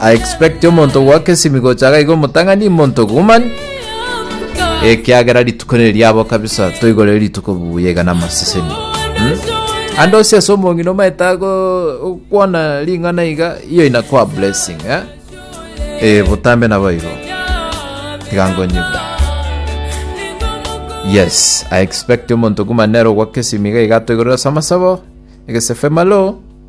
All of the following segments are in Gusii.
I expect omonto ogoaka esimi gocha iga iga omotang'ani monto woman ekiagera rituko nere riabo kabisa toigorere rituko buya iga na amaseseni hmm? ande ose ase omong'ina omaete ago kwana ring'ana iga iyo inakwa blessing eh? eh, botambe nabo igo tigangonyigwe yes i expect omonto kumanero gwake simiga igatoigorera samasabo egesefe malo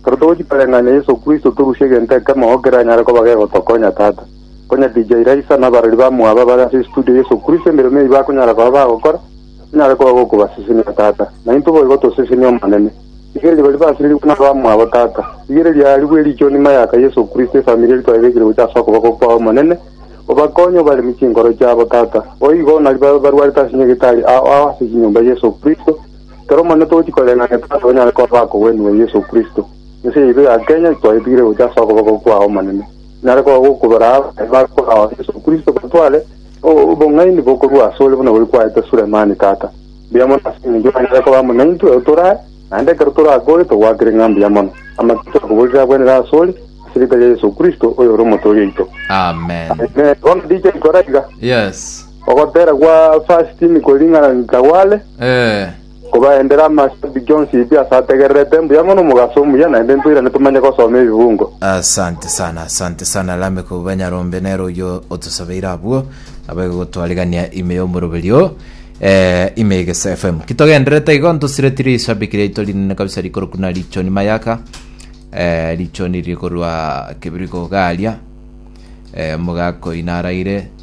Ekero togochia koreng'ania Yeso Kristo, torusie egento ekemo oo keranyare koba gegotokonya, Tata. Konya DJ Raisa na abarori bamwabo abare ase estudio, Yeso Kristo, emeremo eyio bakonyara koba bagokora, enyare koba gokobasesenia, Tata. Naintwe boigo toseseni, Omonene. Rigereria baria baserigwe na abamwabo, Tata. Rigereria aarigwe ericho nyuma y'aka Yeso Kristo, efamiri eria twaebekire gochia ase okoboko kwao, Omonene. Obakonye, obaremie chinkoro chiabo, Tata. Boigo, nari babe barwarete ase nyagetari ao ao ase chinyomba, Yeso Kristo. Ekero monye togochia koreng'ana Tata onyare korora akogwenigwa Yeso Kristo, ense yaito ya Kenya twayetigire gocha ase okoboko kwao omonene. Inyare koba gokobera abo baye bakorao Yeso Kristo batware obong'aini bokorua asore buna gori kwaete Sulemani tata. Mbuya mono ase engencho onyare koba amo naintwe otore aye, naende ekero tore akore togwakire ng'a mbuya mono. Amatuko twakoborire agwenere asore, ase erieta ria Yeso Kristo, oyore Omotoori oito. Amen. Amen. Bono DJ kora iga. Yes. Ogotera gwa Vashiti niko ring'ana ritagware, Eh. kobaendere amasabiki onsi pi ase ategererete, mbuya mono omogaso omuya, naende ntoirane tomanye gosoma ebibungo. Asante sana, asante sana Lameck Banyarombe, nere oyio otosabeire abwo, abe gotwarigania ime y'omoroberio, eh, ime y'Egeso FM. Ki togendererete igo, ntosireti rishabiki riaito rinene kabisa rikorokwa na Richoni Mayaka, eh, Richoni riri korwa Kebirigo iga aria, eh, omogakoina araire.